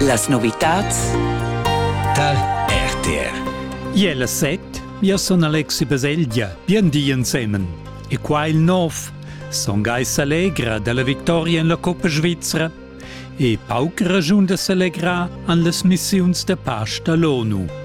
Las novitads tar RTR. Iela set, io son Alexi Baselgia, bien di ensemen. E qua il nov, son Geis allegra dalla victoria en la Coppa Svizzera e pauc ragiun da s'allegrar an las missiuns da pace da l'ONU.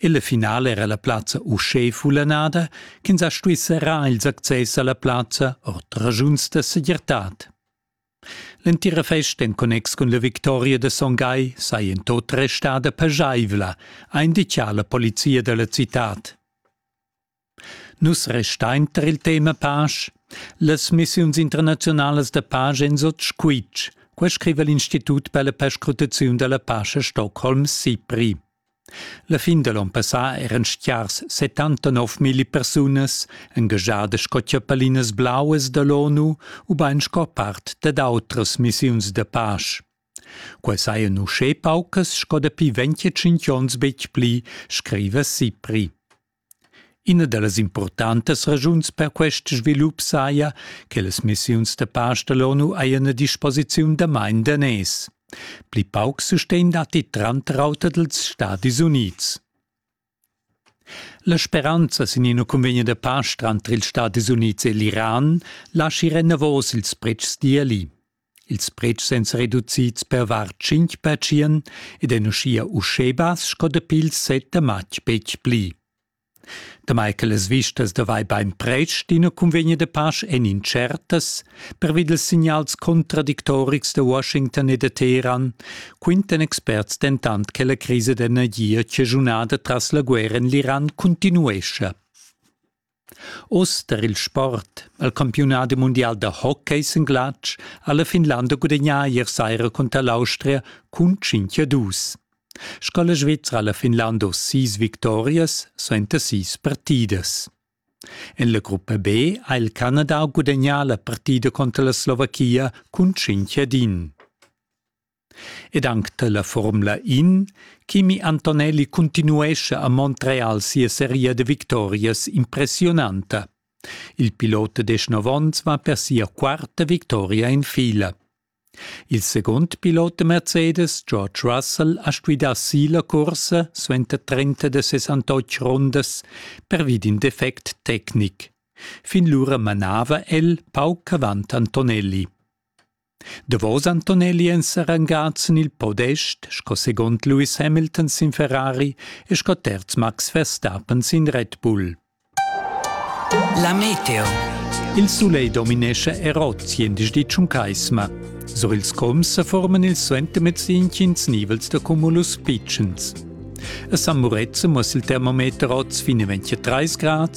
Illa finala era la plazza uschè fullanada ch'ins ha stuì serrar ils access a la plazza ord raschuns da segirtad. L'entira festa en connex cun la victoria da Son Gai saja en tot restada paschaivla, ha indicà la polizia da la citad. Nus restein tar il tema pasch. Las missiuns internaziunalas da pasch ein sut squitsch, quei scriva l'Institut per la perscrutaziun dalla pasch a Stockholm SIPRI. La fin da l'onn passà eran stiars 79.000 persunas engagiadas sco chiappalinas blauas dall'ONU ubain sco part dad outras missiuns da pasch. Quei sajan uschè paucas sco dapi 25 onns betg pli, scriva SIPRI. Ina da las impurtantas ragiuns per quest svilup saja che las missiuns da pasch da l'ONU hajan a disposiziun damain daners. Pli pauc sustegn datti tranter auter dals Stadis Unids. La speranza sin ina cunvegna da pasch tranter ils Stadis Unids e l'Iran laschi renavos ils pretschs d'ieli. Ils pretschs èn reducids per var tschintg pertschien ed èn uschia uschè bass sco dapi il set da matg betg pli. Damai che las vistas davai bain pretsch d'ina cunvegna da pasch èn incertas, pervi dals signals contradictorics da Washington e da Teheran, quintan experts dentant che la crisa d'energia chaschunada tras la guerra en l'Iran cuntinuescha. Oz tar il sport ha il campiunadi mundial da hockey sin glatsch ha la Finlanda gudagnà ier saira cunter l'Austria cun 5 a 2. Sco la Svizra ha la Finlanda sis victorias suenter sis partidas. En la gruppa B ha il Canada gudagnà la partida conter la Slovachia cun 5 ad 1. ed anc dalla Formula In, Kimi Antonelli continuescha a Montreal sia seria de victorias impressionanta. Il pilot de 19 onns va per sia quarta victoria in fila. Il second pilot de Mercedes, George Russell, ha stuidà si la cursa suenter 30 de 68 rundas pervi d'in defect tecnic. Fin lura manava el pauc avant Antonelli. Davos Antonelli èn serangats en il podest sco segund Lewis Hamilton sin Ferrari e sco terz Max Verstappen sin Red Bull. La meteo. Il sulegl dominescha Erozzi en dis di Tschuncaisma. Sur ils coms sa forman ils suentermezz intgins nivels da cumulus pitschens. A San Murezza muss il termometer oz finalmente 30 Grad